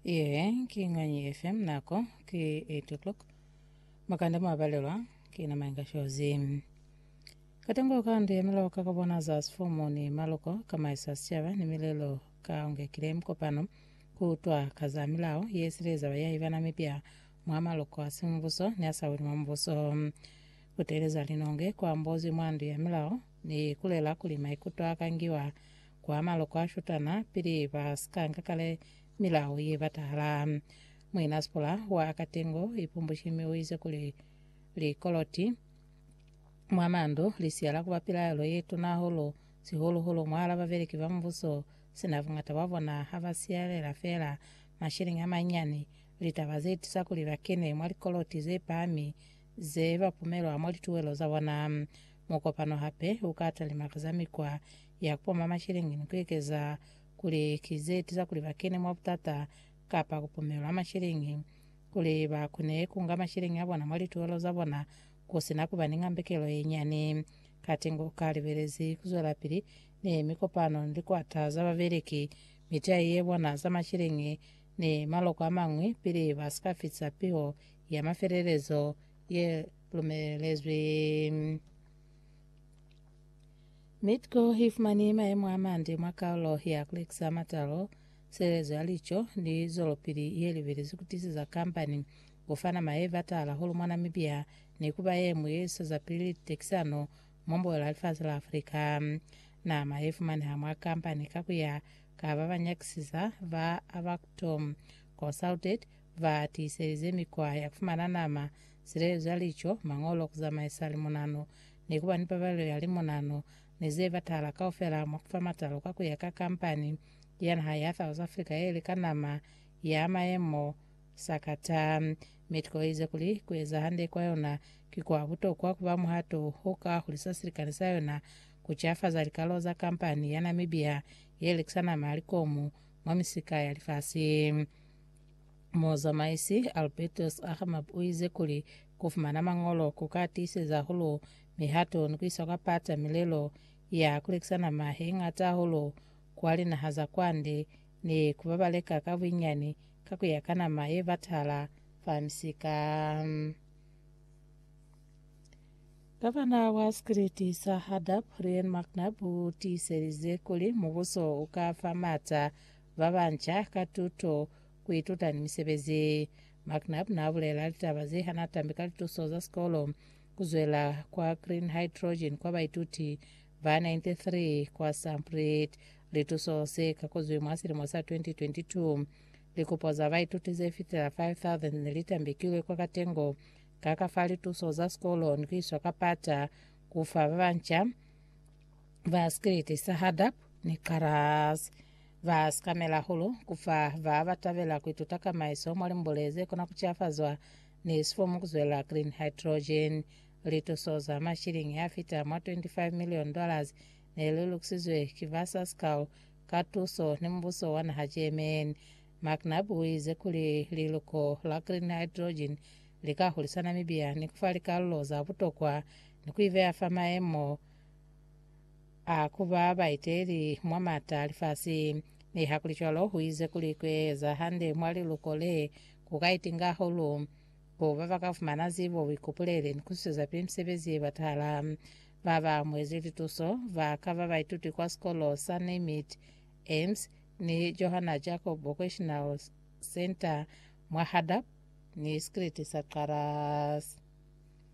Iye ki Ñwanyi FM nako ki 8 o'clock makanda mwabalelwa ki na mainga shozi katango ka ndu ya milao ka kabona za sifomo ni maluko kamaisa sicaba ni milelo ka ungekile mkopano kutwa ka za milao ye sileza bayahi bana mipya mwa maluko a simubuso ni a sa weli mwa mubuso kuteleza linonge kwa mbozi mwa ndu ya milao Ni ikulela kuli maikuto a ka ngiwa kwa maloko a shutana pili ba si ka nga kale milao ye batahala. Muina Spola wa Akatengo Ipumbushi mi u ize kuli, Likoloti mwa mandu li siyala ku ba pilaelo ye tuna hahulu, sihulu-hulu mwahal'a babeleki ba mubuso, sina buñata bwa bona ha ba siyalela fela masheleñi a manyinyani. Litaba ze tusa kuli ba kene mwa likoloti ze pahami ze ba pumelwa mwa lituwelo za bona. Mukopano hape u ka talimakaza mikwa ya ku poma masheleñi ni ku ekeza kuli ki ze tiza kuli ba kene mwa butata kapa ku pumelwa masheleñi kuli ba kone ku nga masheleñi a bona mwa lituhelo za bona ku si na ku ba ni ngambekelo ye nyani. Katengo u ka libelezi ku zwelapili ni mikopano ni likwata za babeleki, mitai ye bona za masheleñi, ni maloko a mañwi pili ba si ka fitisa piho ya mafelelezo ye lumelezwi. Mitco ifumani maemo amande mwa kaulo ya Klixar Matalo, sireletso ya lico ni zwelopili yelibili zikutisiza kambani kufana maye batala hulu mwa Namibia ni kuba yemwi yeswezapili litekisano mwa mboelo ya lifasi la Africa. Nama yefumaneha mwa kambani kakuya ka babanyakisiza ba Abactom Consulted Ba tiiselize mikwa ya ku fumana nama, silelezo ya lico, mañolo, ku zamaisa limunano, ni ku ba ni pabalelo ya limunano, ni ze batahala kaufela mwa ku fa matalo ka ku ya ka kampani ya naha ya South Africa ye lika nama ya mayemo Sakata. Mexico i ize kuli ku eza hande kwa yona ki kwa butokwa ku ba muhato o ka hulisa silikani sa yona ku cafaza likalo za kampani ya Namibia ye lekisa nama ya likomu mwa misika ya lifasi. Muzamaisi Albertus Aghamab uize kuli kufumana mañolo kuka tiiseza hahulu mihato ni kuisa kwa pata milelo ya kulekisa nama yeñata hahulu kwa linaha za kwande ni kubabaleka ka buinyani ka kuya ka nama yebatahala fa misika. Gavana wa Sikiliti sa Hadap, Ryan McNab utiiselize kuli mubuso uka fa maata ba banca ka tuto, ku ituta ni misebezi. McNab n'a bulela litaba ze ha n'a tambi ka lituso za sikolo ku zwela kwa Green Hydrogen kwa baituti ba 93 kwa Samprit. Lituso ze kakozwi mwa silimo sa 2022. Likupo za baituti ze fitela 5,000 ne li tambekilwe kwa katengo ka ka fa lituso za sikolo ni ku iswa ka pata ku fa ba banca ba Skelete sa Hadab ni Karaz. Ba sikamela hulu ku fa ba ba tabela ku ituta kamaiso mwa limbule ze kona ku cafazwa ni sifomu ku zwela green hydrogen. Lituso za mashilingi a fita mwa 25 million dollars ne li lukisizwe ki ba Sascal ka tuso ni mubuso wa naha Germany. McNabb u ize kuli liluko la green hydrogen li ka hulisana mibia ni ku fa likalulo za butokwa ni ku i beya fa maemo a ku ba baeteli mwa m'ata a lifasi. Nihakulicwalo, u ize kuli ku eza hande mwa liluko le ku ka itinga hahulu ku ba ba ka fumana zibo, buikupuleli, ni ku sizwezapi misebezi ye batahala. Ba ba amuezi lituso ba ka ba baituti kwa Sikolo sa Neymit, Ems, ni Johanna Jacob Vocational Centre mwa Hardup ni Sikiliti sa Xarras.